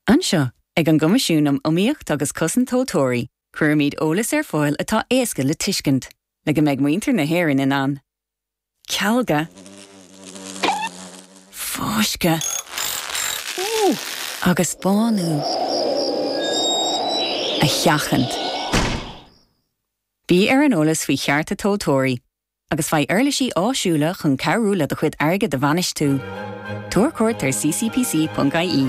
Anseo, ag an gCoimisiún um Iomaíocht agus Cosaint Tomhaltóirí, cuirimid eolas ar fáil atá éasca le tuiscint, le go mbeidh muintir na hÉireann in ann cealga, fáisceadh agus bánú a sheachaint. Bí ar an eolas faoi chearta tomhaltóirí agus faigh uirlisí áisiúla chun cabhrú le do chuid airgid a bhainistiú. Tabhair cuairt ar ccpc.ie.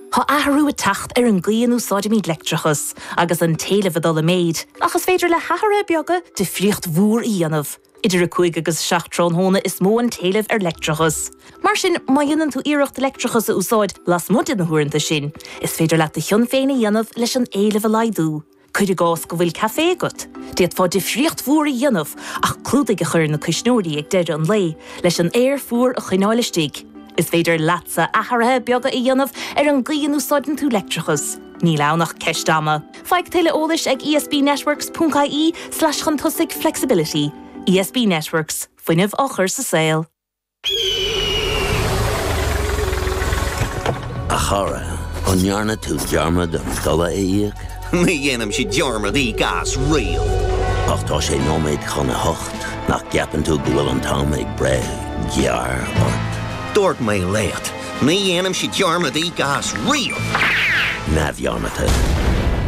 Tá athrú ag teacht ar an gcaoi a n-úsáidimid leictreachas, agus an t-éileamh ag dul i méid, ach is féidir le hathruithe beaga difríocht mhór a dhéanamh. Idir 5 agus 7 tráthnóna is mó an t-éileamh ar leictreachas. Mar sin, má dhéanann tú iarracht leictreachas a úsáid lasmuigh de na huaireanta sin, is féidir leat do chion féin a dhéanamh leis an éileamh a laghdú. Cuir i gcás go bhfuil café agat, d'fhéadfá difríocht mhór a dhéanamh ach clúdaigh a chur ar na cuisneoirí ag deireadh an lae leis an aer fuar a choinneáil istigh. Is féidir leatsa athruithe beaga a dhéanamh ar an gcaoi a n-úsáideann tú leictreachas, níl ann ach ceist ama. Faigh tuilleadh eolais ag ESBnetworks.ie slash chun tosaigh flexibility. ESB Networks, fuinneamh á chur sa saol. A chara, an ndearna tú dearmad an dola a íoc? Ní dhéanann sí dearmad íoc as riamh. Ach tá sé nóiméad chun a hocht, nach gceapann tú go bhfuil an t-am ag breith gearr ort? Dúirt mé leat, ní dhéanaimse dearmad íoc as riamh! Neamhdhearmadta.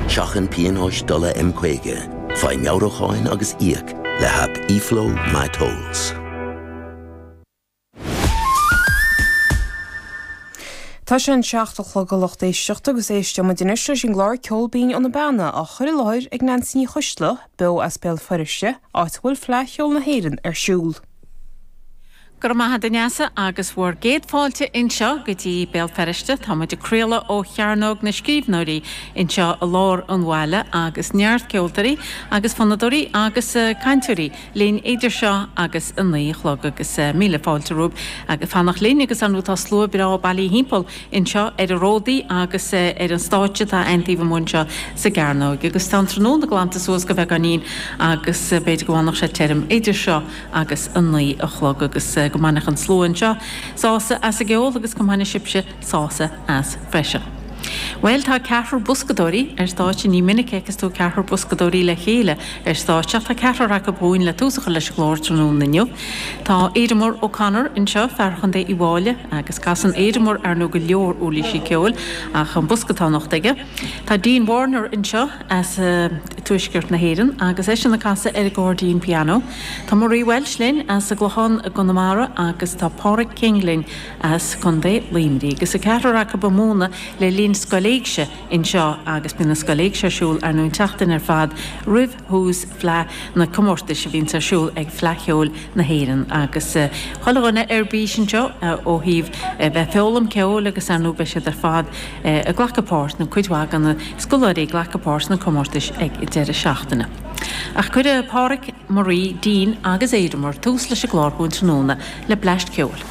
Seachain pionóis dola M50, faigh meabhrúcháin agus íoc le haip eFlow MyTolls. Tá sé an seacht a chlog a lucht éisteachta agus éisteimid anois leis an gclár Ceol Binn ó na Beanna á chur i láthair ag Neansaí Ní Choisdealbha, beo as Béal Feirste, áit a bhfuil Fleadh Cheoil na hÉireann ar siúl. Go raibh maith a'd a Neasa agus bhur gcéad fáilte anseo go dtí Béal Feirste. Tá muid ag craoladh ó Chearnóg na Scríbhneoirí anseo i lár an bhaile agus neart ceoltóirí agus fonnadóirí agus cainteoirí, linn idir seo agus a naoi a chlog agus míle fáilte romhaibh ag fanacht linn agus ar ndóigh tá slua breá bailí thimpeall anseo ar an ródaí agus ar an stáitse atá againn taobh amuigh anseo sa gcearnóig agus tá an tráthnóna glanta suas go bheagáinín agus b'fhéidir go bhfanfadh sé tirim idir seo agus a naoi a chlog agus go mbainfeadh an slua anseo sásamh as a gceol agus go mbaine sibhse sásamh as freisin. Bhuel, tá ceathrar boscadóirí ar stáitse, ní minic a fheiceas tú ceathrar boscadóirí le chéile ar stáitse ach tá ceathrar acu chugainn le tús a chur leis an gclár tráthnóna inniu. Tá Ademar O'Connor anseo, fear Chontae Uíbh Fhailí agus casann Ademar, ar ndóigh, go leor uirlísí ceoil ach an bosca atá anocht aige. Tá Dean Warner anseo as tuaisceart na hÉireann agus eisean ag casadh ar an gcairdín pianó. Tá Marie Walsh linn as an gClochán i gConamara agus tá Páraic King linn, as Contae Luimnigh. Agus an ceathrar acu ag múineadh le linn Scoil Éigse anseo agus bíonn an Scoil Éigse ar siúl ar nú an tseachtain ar fad roimh thús na Fleá na comórtais a bhíonns ar siúl ag Fleadh Cheoil na hÉireann agus chuile dhuine ar bís anseo ó thaobh bheith ag feoghlaim ceoil agus ar nú beidh siad ar fad ag glacadh páirt nó cuid mhaith de na scoláirí ag glacadh páirt sna comórtais ag deireadh na seachtaine. Ach cuirfidh Páraic, Marie, Dan agus Éadaoin tús leis an gclár dúinn tráthnóna le bleaist ceoil.